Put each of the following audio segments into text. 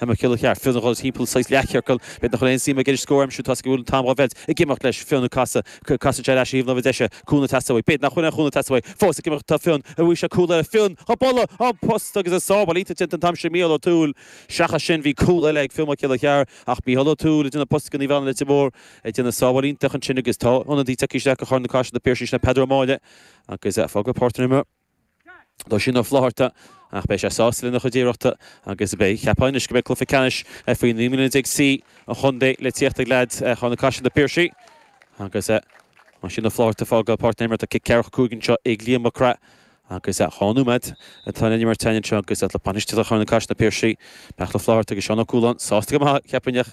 Mac Giolla Cheara, Fionn a dhul timpeall saghas leathchiorcail, b'fhéidir nach bhfuil aon suim aige an scór a aimsiú toisc go bhfuil an t-am dhá mheilt, ag imeacht leis, Fionn ag casadh, casann sé ar ais ar thaobh láimhe deise, cúnamh ag teastáil uaidh, b'fhéidir nach bhfuil aon chúnamh ag teastáil uaidh, fós ag imeacht, tá Fionn, a bhuí seo, cúl eile, Fionn, dhá bualadh, an post agus an sábháil, iontach déanta an t-am sin, Mícheál Ó Tuathail, seachas sin, bhí cúl eile ag Fionn Mac Giolla Cheara, ach Mícheál Ó Tuathail ag déanamh post ag an taobh eile Leitir Móir, ag déanamh sábháil iontach ansin agus tá ionadaí ag tíocht isteach do Charna-Caiseal Na Piarsaigh sin, Peadar Ó Máille agus ag fágáil páirc na himeartha. Tá Oisín Ó Flaithearta, ach beidh sé sásta lena chuid iarrachta agus beidh, cheapfá anois, go mbeidh cluiche ceannais faoi naoi mbliana déag C an Chontae le tíocht ag leaids Charna-Caiseal, Na Piarsaigh, agus Oisín Ó Flaithearta ag fágáil páirc na himeartha cic ceathracha cúig anseo ag Liam Mac Craith. Agus dhá nóiméad atá le n-imirt ann anseo agus le bainisteoirí Charna-Caiseal, Na Piarsaigh, Micheál Ó Flaithearta agus Seán Ó Cualáin, sásta go maith, cheapfainn, ach.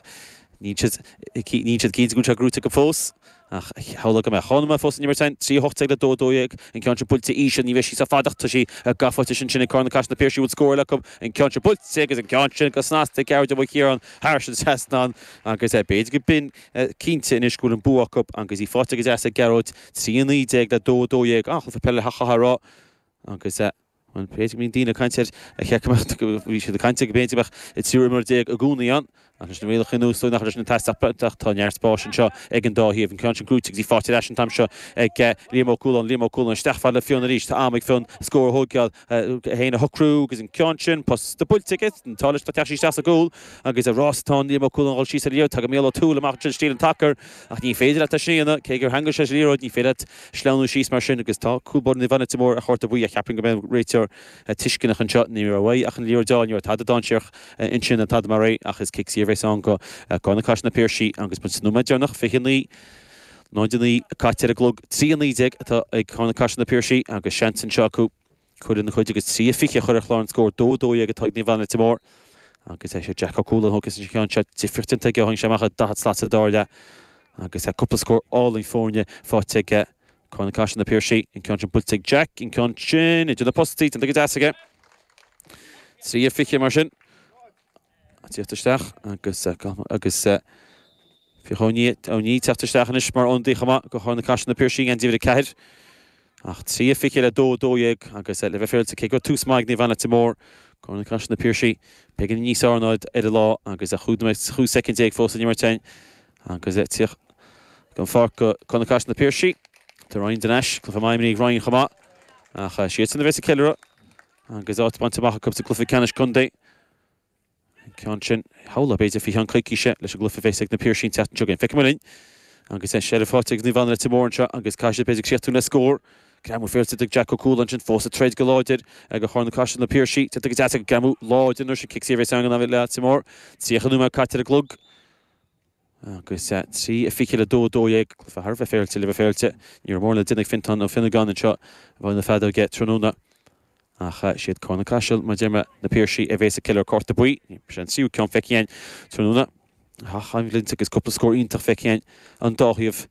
Níl siad cinnte go bhfuil sé gnóthaithe acu fós, ach shamhlófá go mbeadh. Cúpla nóiméad fós le n-imirt ansin, trí a hocht déag le dó a dó dhéag, an ceann sin buailte íseal, ní bheidh sí sách fada ach tá sí gafa faighte. Seans ag Carna-Caiseal Na Piarsaigh an bhfuil scór eile acu, an ceann sin buailte agus an ceann sin go snasta gearr de bhuille Chiarán Harrison seasann ann agus é b'fhéidir go mbeinn cinnte anois go bhfuil an bua acu agus í faighte go deas ag Gearóid, trí a naoi déag le dó a dó dhéag. An-chluiche peile, chaithfeá a rá, agus. B'fhéidir go mbíonn daoine ag caint air a sheicimid go bhfuil siad ag caint air go bpéint a bheadh i dtriúr imreoir déag i gcónaí ann? Ach leis na rialacha nua is dóigh nach raibh sin ag teastáil beagnach. Tá neart spáis anseo ag an dá thaobh. An ceann sin gnóthaithe go deas faighte ar ais an t-am seo ag Liam Ó Cualáin. Liam Ó Cualáin isteach fad le Fionn arís. Tá am ag Fionn scór a thóigeáil, é féin a shocrú agus an ceann sin posta buailte aige. Tá leis, tá teach sí isteach sa gcúl agus rás atá ann. Liam Ó Cualáin a dhul síos ar a dhéard. Tagann Mícheál Ó Tuathail amach ansin stíl an tsacair. Ach ní féidir leat é sin a dhéanamh, cé gur theangmhaigh sé leis an liathróid, ní féidir leat sleamhnú síos mar sin, agus tá cúl báire Naomh Anna, Leitir Móir, ar chárta buí, ach cheapfainn go mbeidh an réiteoir tuisceanach anseo. Ní raibh uaidh ach an liathróid a fháil, ní raibh tada dainséarach ansin ná tada mar é, ach is cic saor a bheas ann do Carna-Caiseal Na Piarsaigh, agus muid sa nóiméad deireanach, 29.09 caite ar an gclog, 3-19 atá ag Carna-Caiseal Na Piarsaigh, agus seans anseo acu. Cur lena gcuid agus trí a fiche a chur ar chlár an scóir dó dó dhéag atá ag Naomh Anna Leitir Móir agus is é Jack Ó Cualáin a thógfas an ceann seo difríocht déanta aige ó tháing sé amach ar an 40 slat sa dara leath agus cúpla scór álainn foirne faighte aige. Carna-Caiseal Na Piarsaigh, an ceann sin buailte ag Jack, an ceann sin idir na postaí, déanta go deas aige. Trí a fiche mar sin. tíocht isteach agus agus bhíodh Ó Niaidh Ó Niaidh teacht isteach anois mar ionadaí chomh maith do Charna-Caiseal Na Piarsaigh in Divid 4 ach 3 fiche le 2 12 agus le bheith féaráilte cé go raibh tús maith ag Naomh Anna Leitir Móir Carna-Caiseal Na Piarsaigh beagán níos fearr ná iad ar an lá agus cúig nóiméad chúig soicind déag fós le n-imirt ann agus tíocht den pháirc do Carna-Caiseal Na Piarsaigh tá Ryan den ais cluiche maith imrithe ag Ryan chomh maith ach siadsan a bheas ag ceiliúradh agus áit bainte amach acu sa gcluiche ceannais contae ceann sin, shamhlóinn, b'fhéidir, faoi cheann coicíse leis an gcluife bheas ag na Piarsaigh an tseachtain seo chugainn. Feicfidh muid linn. Agus é, Sheriff áit agus Naomh Anna Leitir Móir anseo agus caithfidh siad b'fhéidir críochtú le scór. Greamú féaráilte ag Jack O'Coull ansin fós ag troid go láidir go Carna Caiseal na Piarsaigh. Tiocfaidh go deas acu greamú láidir an uair sin, cic saor bheas ann go Naomh Anna Leitir Móir. Tríocha nóiméad caite ar an gclog. agus trí a fiche le 2, 12, cluife thar a bheith féaráilte le bheith féaráilte. Ní raibh mórán le déanamh ag Fionntán Ó Fionnagáin anseo i bhfeighil na feadóige tráthnóna, ach siad Carna Caiseal, mar a deir mé, Na Piarsaigh a bhéas ag ceiliúradh Cárta Buí. Ní raibh sé an tríú ceann feicthe againn tráthnóna, ach aon bhlianta agus cúpla scór iontach feicthe againn ón dá thaobh.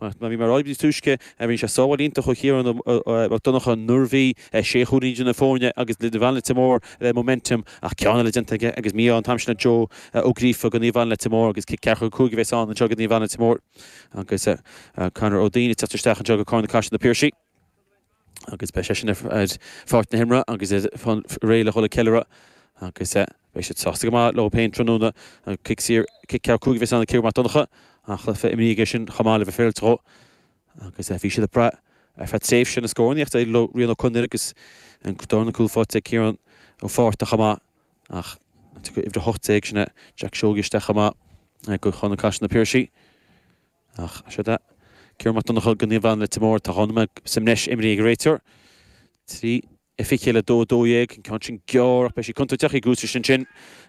Mar a bhí mé ag rá ní ba túisce, rinne sé sábháil iontach ó Chiarán Mac Donnacha nuair a bhí sé chúilín idir na foirne agus Naomh Anna Leitir Móir le momentum ach ceann eile déanta aige agus mí-ádh an t-am sin le Joe Ó Gríofa go Naomh Anna Leitir Móir agus cic ceathracha cúig a bhéas ann anseo go Naomh Anna Leitir Móir agus Conor Ó Duinn ag teacht isteach anseo go Carna Caiseal na Piarsaigh. agus beidh seisean ar pháirc na himeartha agus réidh le dhul ag ceiliúradh agus beidh siad sásta go maith leo féin tráthnóna. Cic saor, cic ceathracha cúig a bheas ag Ciarán Mac Donnacha ach cluiche imrithe aige sin chomh maith le bheith féaráilte dhó agus bhí siad ag brath ar feadh tréimhse na scórinnéachta ar Rian Ó Conaire agus dornán cúl faighte ag Ciarán Ó Fátharta chomh maith ach tiocfaidh uimhir 18 sin Jack Seoige isteach chomh maith go Carna Caiseal na Piarsaigh. Ach seod é. Ciarán Mac Donncha, go Naomh Anna Leitir Móir, Tá dhomhanda mé suim leis, imríonn ag réiteoir. Trí a fiche le 2 12, an ceann sin gearr ach beidh sí contúirteach, í curtha ar ais ansin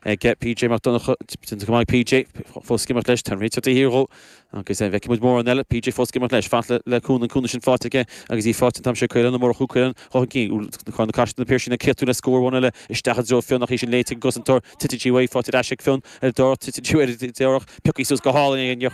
ag PJ Mac Donncha, déanta go maith ag PJ, fós ag imirt leis, tá an réiteoir de shíor dhó agus an bhfeicfidh muid mórán eile? PJ fós ag imirt leis, ag fanacht le cúnamh, an cúnamh sin faighte aige agus í faighte an t-am seo, Caolán Ó Murchú, Caolán dhá chun cinn, úd Carna Caiseal na Piarsaigh in ann críochtú le scór amháin eile isteach i dtreo Fionn ach í sin léite ag an gcosantóir, titeann sí uaidh, faighte ar ais ag Fionn ar dá, titeann sí uaidh ar dá, piocthaí suas go hálainn é, níor